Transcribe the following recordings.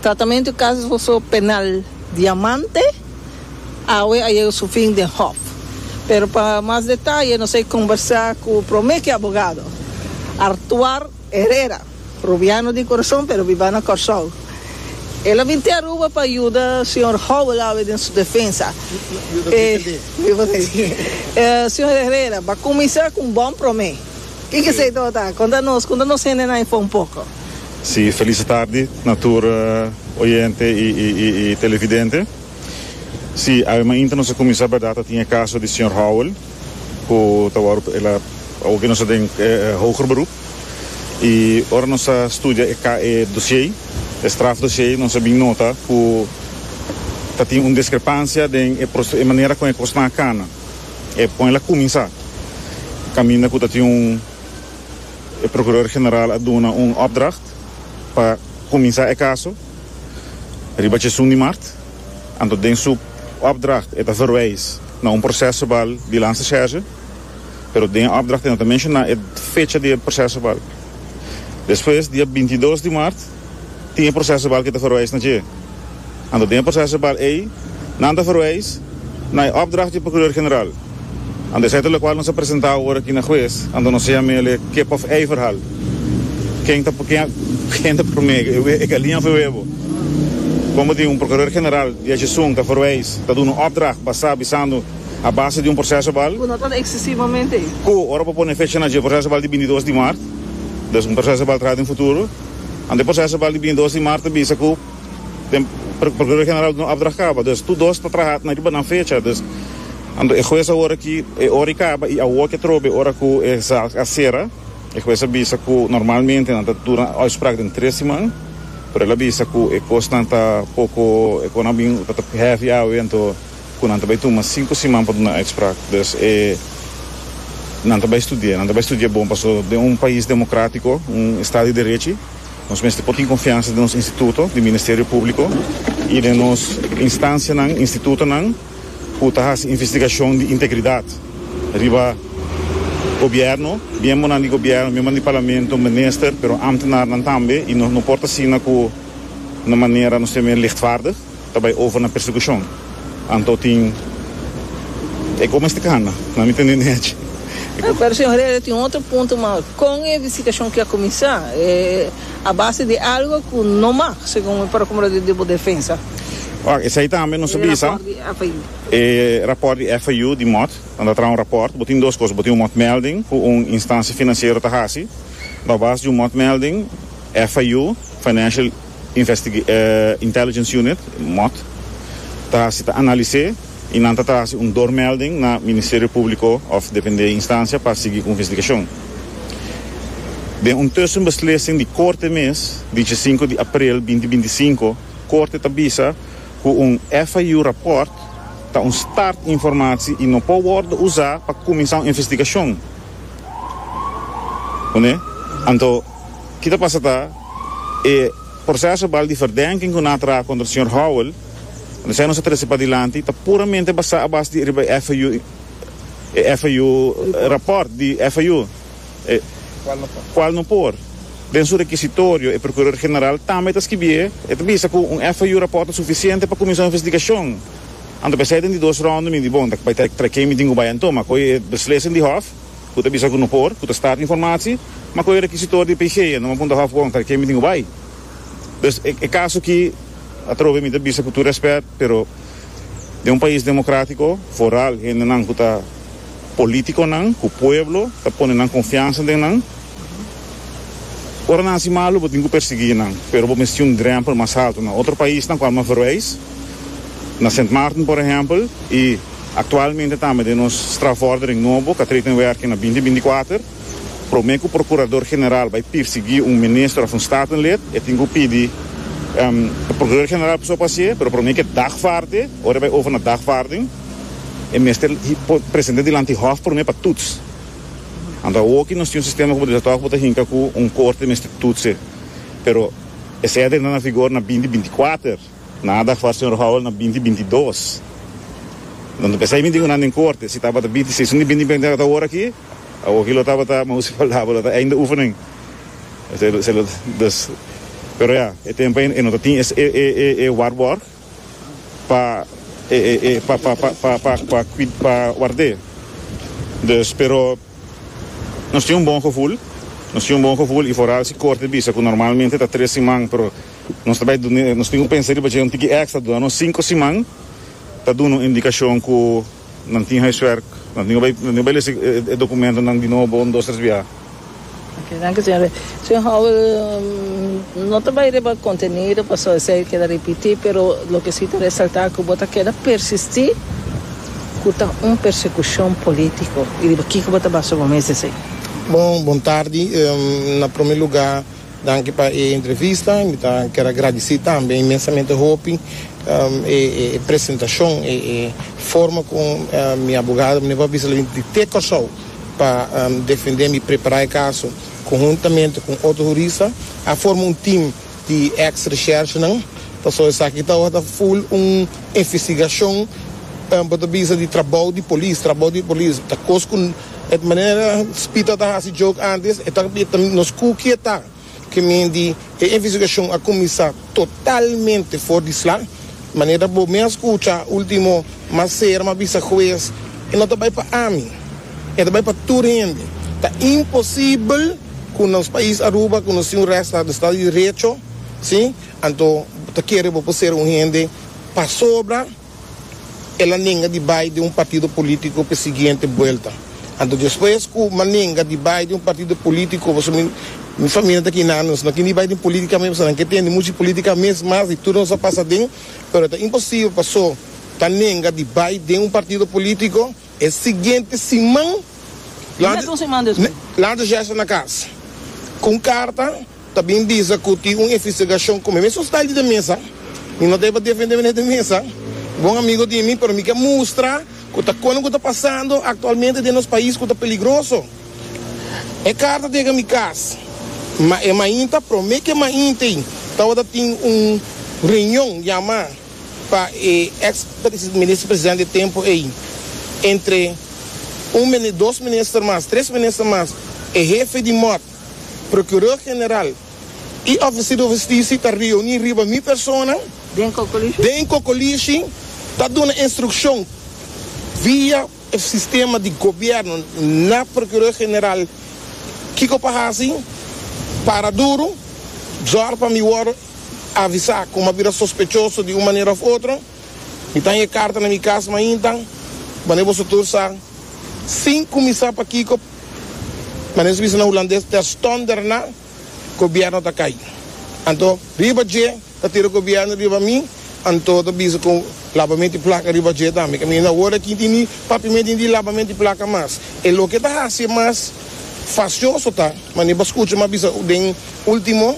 Tratamentu di kaso penal Diamante awe a yega su fin den Hof, pero pa mas detaye nos a kombersá ku promé ki abogado, Artuar Herrera, rubiano di Kurason pero biba na Kòrsou. El a bin te Aruba pa yuda señor Howell awe den su defensa. Señor Herrera, b'a kuminsá ku un bon promé. Kiko esei tabata? Konta nos, konta nos hendenan ei por un poko. Si felice tardi na tur oyente y televidente. Si awe mainta nos a cuminsa berdad ta tin e caso di señor Howell cu ta wordo el a awor nos ta den hoger beroep y ora nos a studia e ca e dosie e straf dosie nos a bin nota cu ta tin un discrepancia den e proce e manera con e cosnan a cana e con el a cuminsa caminda cu ta tin un E procurador general a duna un opdracht pa cuminsa e caso riba tjesun di mart, anto den su opdracht e ta verwijs na un proces verbal di lansa scherge, pero den e opdracht e no ta menciona e fecha di e proces verbal. Despues, dia binti dos di mart, Tin e procesebal ki ta verwijs na dje. Anto den e procesebal ei nan ta verwijs na e opdracht di Procureur-General. Anto esei ta lokual nos a presenta awor aki na hues, anto nos a yama el e kip of ei verhal. Ken ta ken ta prome, e galin of e webo? Kon bo tin un Procureur-General di achi sun ta verwijs, ta duna un opdracht basa bisando a base di un procesebal? Ku no ta eksesivamente. Ku ora bo pone fecha na dje procesebal di binti dos di mart, dus un procesebal traha den futuro. Ante proseso bal di bini dos di mart a bisa ku den Prokurador General di no opdracht kaba, dus tur dos ta traha na riba nan fecha, dus ando e hues awor aki e ora i kaba i awor ke trobe e ora ku e zaak a sera. E hues a bisa ku normalmente nan ta duna uitspraak den tres siman, pero el a bisa ku e kosnan ta poko, e kosnan a bin tabata hevi awe, anto Cu nan ta bay tuma cinco siman pa duna uitspraak, dus e nan ta bay studia, nan ta bay studia bon paso den un pais democratico, un estado di derechi, nos mester por tin confiansa den nos instituto di ministerio publico y den nos instancianan, institutonan cu ta haci investigacion di integridad riba gobierno, miembonan di gobierno, miembonan di parlamento, minister, pero ambtenarnan tambe y nos no por ta asina cu na manera nos ta e men lichtvaardig. Ta bai over na persecucion. Anto tin e coma este cana? No a mintende ni achi. E cu. Pero señor Herrera tin otro punto mas, con e visitacion ki a cuminsa a base di algo cu no mag segun mi procumro di di bo defensa. Wacht, esai tambe nos a bisa. E rapport di FIU di mot nan ta traha un rapport. Bo tin dos cos, bo tin un motmelding cu un instancia financiero ta haci. Na base di un motmelding FIU, Financial. Intelligence Unit, mot, ta hasi ta analis'é i nan ta trahasi un doormelding na Ministerio Públiko òf dependé instancia pa sigui ku investigashon. Den un tussenbeslising di Korte mes di chesinku di aprel binti binti i sinku, Korte ta bisa ku un FIU rapòrt ta un start informasi i no por wòrdu usá pa kuminsá un investigashon. Anto, ki ta pasa ta. E proseso bal di verdenking ku nan a traha kontra señor Howell, unda sea nos a trese padilanti, ta puramente basá a base di riba e FIU, e FIU rapòrt di FIU, e kual no por. Den su rekisitorio e prokuror general tambe ta skibié, e ta bisa ku un FIU rapòrt ta sufisiente pa kuminsá un investigashon. Anto p'esei den di dos rònde mi di bon, ta bai ta traikemi tin ku bai anto, ma koe e beslissing di hòf, Cu ta bisa cu no por, cu ta start informatie, ma cu e rekisitor di Peigeia no a punta hof Wonker ken mi tin cu bay. Dus e caso aki atrobe mi ta bisa cu tur respet, pero den un pais democratico, vooral hendenan cu ta politiconan, cu pueblo ta pone nan confiansa den nan, Ora nan hasi malu, bo tin ku persiguí nan, pero bo mester tin un drèmpel mas haltu. Na otro paisnan ku alomer verweis, na Sint Maarten por ehèmpel, i aktualmente tambe den nos strafvordering nobo ku a trede in wèrking na binti binti kuater, promé ku prokurador general bai pirsiguí un minister òf un statenlid, e tin ku pidi prokurador general pasobra pa hasié, pero promé ke dagvaarde, ora e bai over na dagvaarding, e mester present'é dilanti hòf promé pa tuts. Anto awoki nos tin un sistema komo di Latòk ku ta hinka ku un korte mester tutse. Pero e sède na na vigor na binti binti kuater, nan a dal far señor Howell na binti binti dos. Anto p'esei mi di ku nan den korte, si tabata binti seis, un di binti binti kuater ora aki, awoki lo tabata mousi falabel, lo ta einde oefening. Pero ya, e tempo ei e no ta tin e warborg. pa pa ward'é. Dus pero nos tin un bon gevoel, nos tin un bon gevoel y foral si corte bisa cu normalmente ta tres siman pero nos ta bay nos tin cu pensa riba dje un tiki extra duna nos cinco siman ta duna un indicacion cu Nan tin huiswerk. Nan tin ku bai lesa e dokumentonan di nobo un dos tres biaha. Oke, danki señor. Señor Howell, no ta bai riba kontenido pasobra esei keda ripití, pero loke si ta resaltá ku bo ta keda persistí ku ta un persekushon polítiko i riba kiko bo ta basa bo mes esei. Bon tardi. Na promé lugá. Danki pa e entrevista. Mi ta ker a gradisí tambe inmensamente hopi e presentashon, e forma ku mi abogado mene bo a bisa lo bini di te Kòrsou pa defendé mi, prepará e kaso konhuntamente ku un otro hurista. A forma un tim di èks reshèrshenan, pasobra esaki ta ora ta ful un investigashon, bo ta bisa di trabou di polis, trabou di polis ta kos ku. E manera Spita ta hasi joke antes, e ta beta nos ku ke ta, ke men di e investigashon a kuminsá totalmente for di sla. Manera bo mi a skucha último mas ser mi a bisa hues, e no ta bai pa ami, e ta bai pa tur hende. Ta imposibel ku nos pais Aruba ku nos tin un rèsta di estado di derecho, si, anto bo ta kere bo por ser un hende pasobra. el a nenga di bai den un partido politico p'e siguiente buelta. Anto despues cu m'a nenga di bai den un partido politico, pasobra mi, mi famia ta aki nan, nos no kende bai den politica mes pasobra nan ke tende muchu politica mes mas di tur nos a pasa den, pero ta imposible pa so ta nenga di bai den un partido politico. E siguiente siman, lanta Jester na cas cu un carta ta bin bisa cu tin un investigacion cu mi mes a sta di den mesa. Mi no ta e pa defende mi na e den mesa, bon amigo di mi, pero mi ke mustra cu ta cono cu ta pasando actualmente den nos pais cu ta peligroso. E carta tega mi cas, ma e mainta, prome ke maintei, tawata tin un reunion yama. pa e ex Minister Presidente e tempo ey, entre un mini dos Minister mas, tres Minister mas, e Hefe di Mot, Procureur General y Officer di Hustici ta reuni riba mi persona den Cocolishi ta duna instruccion via e sistema di Gobierno na Procureur General kico pa haci, para duro, zorg pa mi wor. Avisa kuma bira sospechoso di un manera of otro. Mi ta haya karta na mi kas mainta. Wanneer boso tur sa sin kumisa pa kiko, manera su bisa na Hulandes, terstonder na gobierno ta kai. Anto riba dje ta tira gobierno riba mi, anto ta bisa ku labamento di plaka riba dje tambe. Kami no awor aki tin di papiamento ni di labamento di plaka mas. E loke ta hasi mas fasioso ta manera bo skucha mi a bisa den ultimo.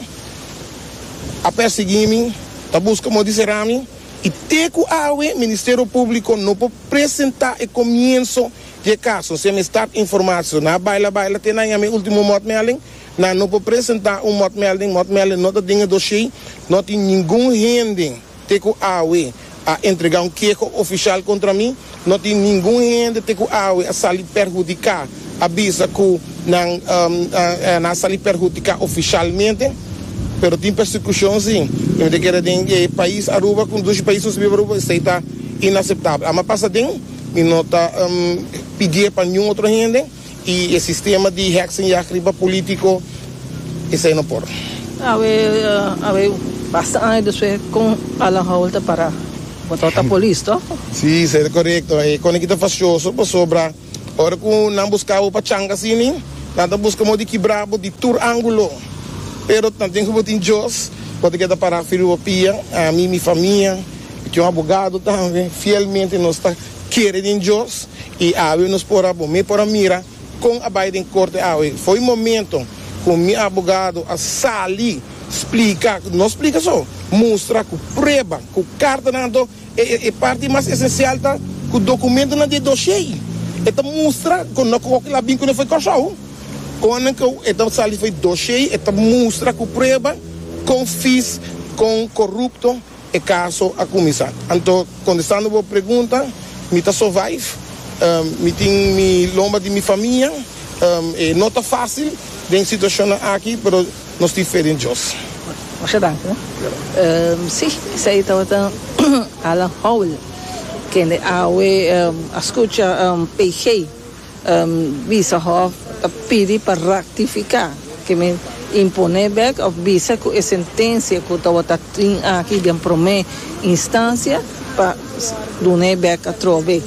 a persegui mi, ta busca modo di sera mi y te cu awe Ministerio Publico no por presenta e comienzo di e caso. Si a mestad informacion na baila baila te na yami ultimo motmelding, nan no por presenta un motmelding, motmelding no ta den e doshey, no tin ningun hende. Te ku awe a entregá un keho ofisial kontra mi, no tin ningun hende te ku awe a sali perhudiká, a bisa ku nan a sali perhudiká ofisialmente, pero tin persekushon sí. I mi ta kere den e pais Aruba, ku dushi pais nos a biba Aruba, esei ta inaseptabel. Amba pasa den, mi no ta pidié pa niun otro hende. Y e sistema di heksenjacht riba politico, esey no por. Awe awe basta aña despues con Alan Howell ta para botao ta polis to. Sí esey ta corecto. E cona ki ta facioso pasobra ora cu nan busca bo pa changa asini nan ta busca modi kibra bo di tur angulo. Pero nan tin cu bo tin Dios cu ta keda para firma bo pia. Ami mi famia y con abogado tambe fielmente nos ta. kere den Dios y awe nos por a bo me por a mira con a bay den corte awe fo'i momento cu mi abogado a sali splica no splica so mustra cu prueba cu cartanan anto e e parti mas esencial ta cu documentonan den dosie'i e ta mustra cu no cu aki la bin cune fo'i Corsou con nan cu e ta sali fo'i dosie'i e ta mustra cu prueba con fees con corrupto. E caso a cuminsa. Anto, contestando bo pregunta, mi ta survive. Mi tin mi lomba di mi famia. E no ta facil den situacionnan aki, pero nos tin fe den Dios. Masha danki. Si, esei tabata Alan Howell, kende awe a scucha PG. Bisa Hòf ta pidi pa rektifiká ke men imponé bèk òf bisa ku e sentensia ku tabata tin aki den promé instansia pa dun'é bèk atrobe.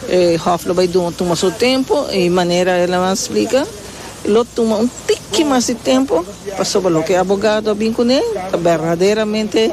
E Hòf lo bai tuma su tempu i manera el a ban splika lo tuma un tiki mas di tempu pasobra loke abogado a bin kuné ta berdaderamente